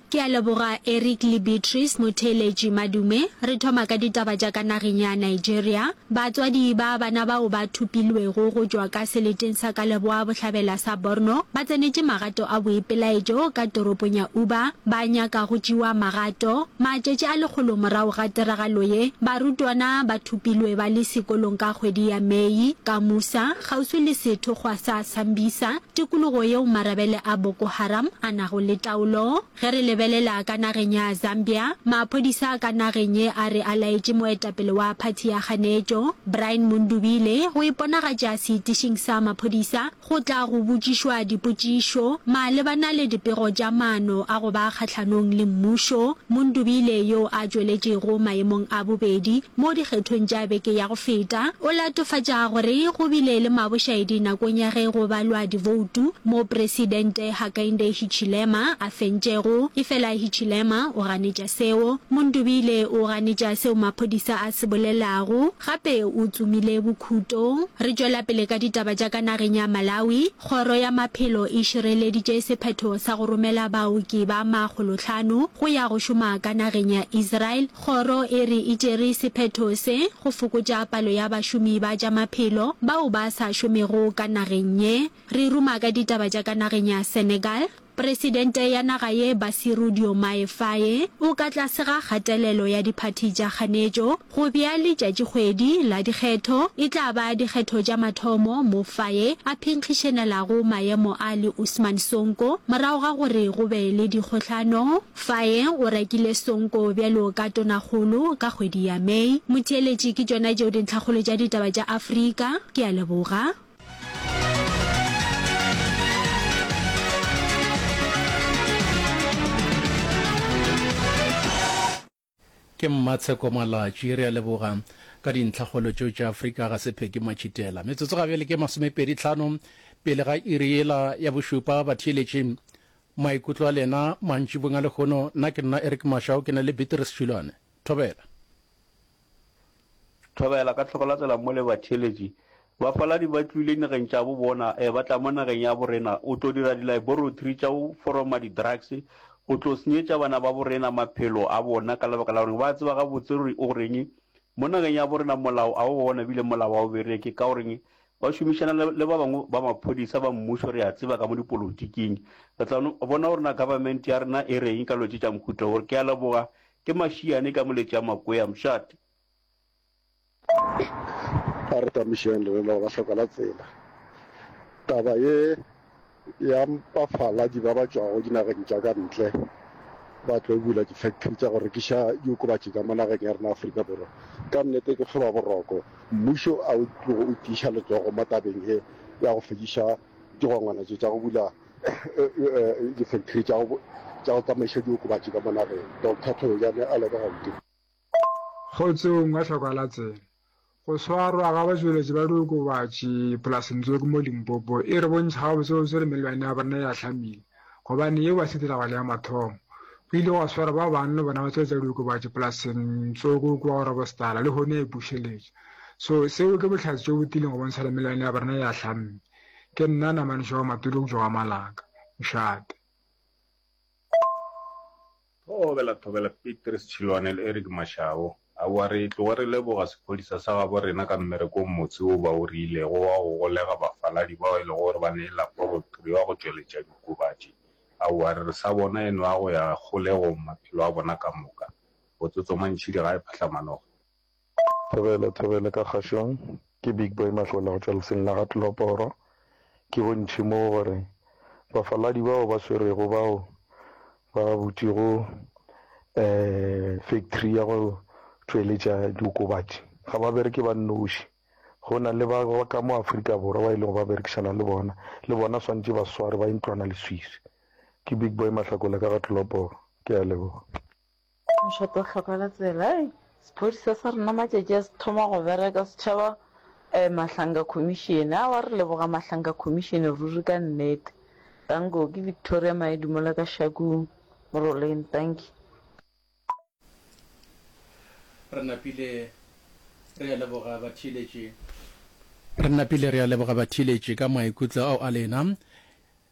Ke a leboga Eric le Beatrice Motheeletši Madume. Re thoma ka ditaba tša ka nageng ya Nigeria. Batswadi ba bana bao ba thopilwego go tšwa ka seleteng sa ka leboa bohlabela sa Borno ba tsenetše magato a boipelaetšo ka toropong ya Uba ba nyaka go tšewa magato. Matšatši a lekgolo morago ga tiragalo ye, barutwana ba thopilwe ba le sekolong ka kgwedi ya Mei ka Musa, kgauswi le sethokgwa sa Sambisa. tikologo yeo marabele a Boko Haram a nago le taolo. Ge re lebelela ka nageng ya Zambia, maphodisa a ka nageng ye a re a laetše moetapele wa phathi ya kganetšo, Brian Mundubile, go iponagatša seitišing sa maphodisa go tla go botšišwa dipotšišo malebana le dipego tša maano a go ba kgahlanong le mmušo. Mundubile, yo a tšweletšego maemong a bobedi mo dikgethong tša beke ya Feta, o latofatša gore go bile le mabošaedi nakong ya ge go balwa diboutu moo Presidente Hakainde Hichilema a fentšego, efela Hichilema o ganetša seo. Mundubile o ganetša seo maphodisa a se bolelago, gape o tsomile bokhuto. Re tšwela pele ka ditaba tša ka nageng ya Malawi. Kgoro ya Maphelo e šireleditše sephetho sa go romela baoki ba makgolohlano go ya go šoma ka nageng ya Israel. Kgoro e re e tšere sephetho se go fokotša palo ya bašomi ba tša maphelo bao ba sa šomego ka nageng ye. Re ruma ka ditaba tša ka nageng ya Senegal. Presidente ya naga ye Bassirou Diomaye Faye o ka tlase ga kgatelelo ya diphathi tša kganetšo go bea letšatšikgwedi la dikgetho. E tla ba dikgetho tša mathomo mo Faye a phinkgišenelago maemo a le Ousmane Sonko morago ga gore go be le dikgohlano. Faye o rekile Sonko bjalo ka Tonakgolo ka kgwedi ya May. Motheeletši, ke tšona tšeo dintlhakgolo tša ditaba tša Afrika. Ke a leboga. Ke Mmatsheko Malatši, re a leboga. Ka dintlhakgolo tšeo tša Afrika ga se Peggy Matšhitela. Metsotso ga bjale ke masomepedi tlhano pele ga iri yela ya bošupa. Batheeletši, maikutlo a lena mantšibong a lehono. Nna ke nna Eric Mashao, ke na le Beatrice Šulwane. Thobela. Thobela ka tlhogo la tsela mo le batheeletši ba faladi ba tlwile nageng tša bo bona e ba tla mo nageng ya bo rena o tlo dira di laboratory tša go foroma di drugs o tlo senyetša bana ba bo rena maphelo a bona ka lebaka la gore ba tseba ga botse gore o reng mo nageng ya bo rena molao a o bona bile molao wa o bereke ka goreng ba šomišana le ba bangwe ba maphodisa ba mmušo re a tseba ka mo dipolotiking re tla bona gore na government ya rena e reng ka lo tše tša mohuta gore ke a leboga Ke mašiane ka mo le tša makwea mšate. A re tamišeng le lena go ba hloka la tsela. Taba ye ya mpafala di ba ba tšwago dinageng tša ka ntle ba tlo bula di factory tša go rekiša diokobatši ka mo nageng ya rena Afrika Borwa ka nnete ke tlhoba boroko mmušo a o tlogo o tiiša letsogo mo tabeng ye ya go fediša digongwana tše tša go bula difactory tša go tsamaiša diokobatši ka monageng doctor thojane a leka gauteng. Kgotsong wa hlokwa la tsena. Go swarwa ga batšweletši ba diokobatši polaseng tso ke mo Limpopo e re bontšha gabotsebotse gore melwane ya borena e a hlamile gobane yeo ga se tiragalo ya mathomo. Go ile gwa swarwa ba bang le bona ba tsweletša diokobatši polaseng tso ko kua Grobostal lehono ya ipušeletša. So seo ke bohlatse tšo botileng go bontšha gore melwane ya borena e a hlamile. Ke nna Namane Shawa Matulo go tšwa wa Malaka, Mshate. Thobela Thobela, Petrus Chilwane le Eric Mashabo. Aowa re tloga re leboga sephodisa sa gabo rena ka mmereko o motse wo ba o riilego wa go golega bafaladi bao e lego gore ba ne e laporotri wa go tšweletša dikobatši. Aowa re re sa bona e nwa go ya kgolegong maphelo a bona ka moka. Botsotso mantšhidi ga e phahla manoga. Thobele, Thobele ka kgašong, ke Big Boy Mahlola go tšwa lefseng la ga Tlhoporo. Ke bontši mo gore bafaladi bao ba swerego bao ba butšego factory ya go tšweletša diokobatši ga ba bereke ba nnoši, go na le ba ka mo Afrika Borwa ba e lego ba berekišana le bona, le bona swantše ba swarwe ba ye ntlwanaleswiswi. Ke Big Boy Mahlakola ka ga Tlhoporo. Ke a leboga. Mošate o hloka ka tsela. Hei, sephodisa sa rena matšatši a se thoma go bereka, setšhaba um Mahlanka Commission. Aowa, re leboga Mahlanka Commission ruri ka nnete. Danko, ke Victoria Maedi mola ka Shakung, Moroleng. Dankie. Re napile re a leboga batheeletši. Re napile re a leboga batheeletši ka maikutlo ao a lena.